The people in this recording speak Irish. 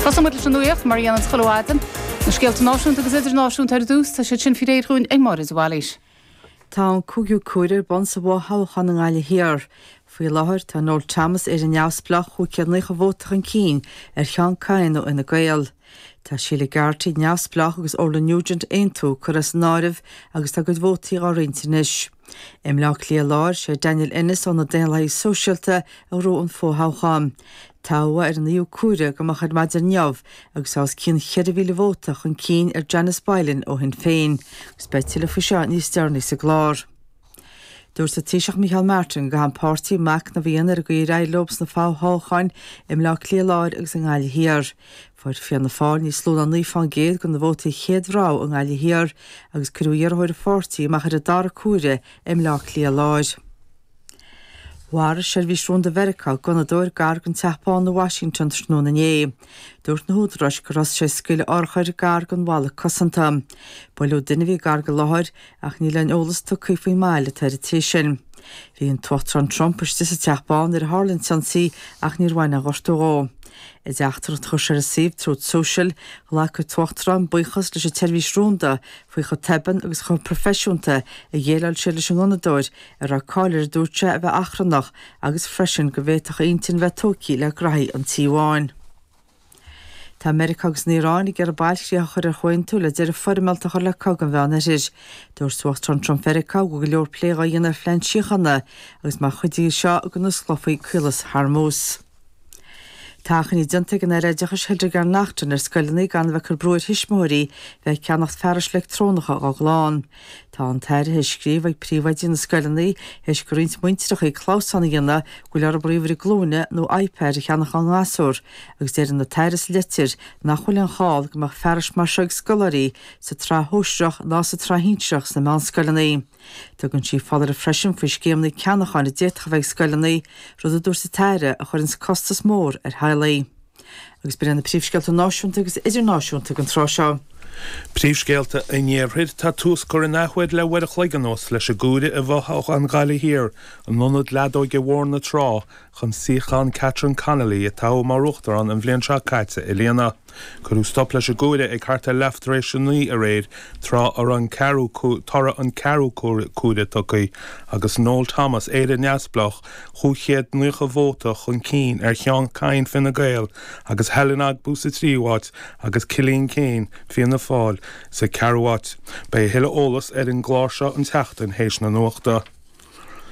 Tosóidh muid leis an nuaíocht, mar a dhéananns chuile mhaidin, na scéalta náisiúnta agus idirnáisiúnta ar dtús, tá siad sin faoi réir dhúinn ag Máire de Bhailís. Tá an cúigiú comhaireamh ar bun sa bhfo-thoghchán i nGaillimh Thiar. Faoi láthair, tá Noel Thomas Éire Neamhspleách 590 vóta chun cinn ar Sheán Kyne ó Fhine Gael. Tá Sheila Garrity, neamhspleách, agus Orla Nugent, Aontú, curtha as an áireamh agus tá a gcuid vótaí dhá roinnt anois. I mBleá Cliath Láir, sé Daniel Ennis ó na Daonlathaigh Sóisialta a ghnóthaigh an fo-thoghchán. Toghadh ar an naoú comhaireamh go moch ar maidin inniu agus é os cionn cheithre mhíle vóta chun cinn ar Janice Boylan ó Shinn Féin, agus beidh tuilleadh faoi seo níos deireanaí sa gclár. Dúirt an Taoiseach Micheál Martin go gcaithfidh an páirtí macnamh a dhéanamh ar an gcaoi ar éirigh leo sna fo-thoghcháin i mBleá Cliath Láir agus i nGaillimh Thiar. Fuair Fianna Fáil níos lú ná 9 faoin gcéad de na vótaí chéad rogha i nGaillimh Thiar agus cuireadh iarrthóir an pháirtí amach ar an dara comhaireamh i mBleá Cliath Láir. Mharaigh Seirbhís Rúnda Mheiriceá gunnadóir gar don Teach Bán i Washington tráthnóna inné. Dúirt na húdaráis gur thosaigh sé ag scaoileadh urchair gar don bhalla cosanta. Buaileadh duine a bhí gar don láthair Ach níl aon eolas tugtha faoin mbail atá ar an té sin. Bhí an tUachtarán Trump istigh sa Teach Bán nuair a tharla an t-ionsaí ach níor bhain aon ghortú dhó. I dteachtaireacht a chuir sé ar an suíomh Truth Social, ghlac an tUachtarán buíochas leis an tSeirbhís Rúnda faoi chomh tobann agus chomh proifisiúnta a dhéileáil siad leis an ngunnadóir, a raibh cáil air a dúirt sé a bheith achrannach agus freisin go bhféadfadh a intinn bheith tógtha le graithí an Tí Bháin. Tá Meiriceá agus an Iaráin ag iarraidh bailchríoch a chur ar chomhaontú le deireadh foirmeálta a chur le cogadh an Mheán Oirthir. Dúirt Uachtarán Trump Mheiriceá go bhfuil go leor plé dhá dhéanamh ar phlean síochána agus mar chuid de seo go n-osclófaí Caolas Hormuz. Tá achainí déanta ag an Aire Oideachais Hildegarde Naughton ar scoileanna gan a bheith ag cur brú ar thuismitheoirí bheith ag ceannacht fearais leictreonacha dhá gclann. Tá an tAire ag scríobh ag príomhoidí na scoileanna théis do roinnt muintireacha clamhsán a dhéanamh go bhfuil orthu ríomhaire glúine nó iPad a cheannach dá ngasúir agus deir an tAire sa litir nach bhfuil aon chall go mbeadh fearais mar seo ag scoláirí sa tsraith shóisearach ná sa tsraith shinsearach sna meánscoileanna. Tugann sí foláireamh freisin faoi scéimeanna ceannacháin a d'fhéadfadh a bheith ag scoileanna, rud a dúirt an tAire a chuireanns costas mór ar theaghlaigh. Agus b'in iad na príomhscéalta náisiúnta agus idirnáisiúnta ag an tráth seo. Príomhscéalta an Iarthair Tá tús curtha in athuair le uair a chloig anuas leis an gcomhaireamh i bhfothoghchán Ghaillimh Thiar in ionad leadóige Bhóthar na Trá chun suíochán Catherine Connolly, a toghadh mar uachtarán an bhliain seo caite, a líonadh. Cuireadh stop leis an gcomhaireamh ag thart ar leath tar éis a naoi aréir tráth a raibh toradh an ceathrú comhaireamh tugtha agus Noel Thomas, Éire Neamhspleách, 590 vóta chun cinn ar Sheán Kyne Fine Gael agus Helen Ogbu sa tríú áit agus Cillian Keane Fianna Fáil sa ceathrú áit. Beidh a thuilleadh eolas ar an gclár seo an tseachtain théis na nuachta.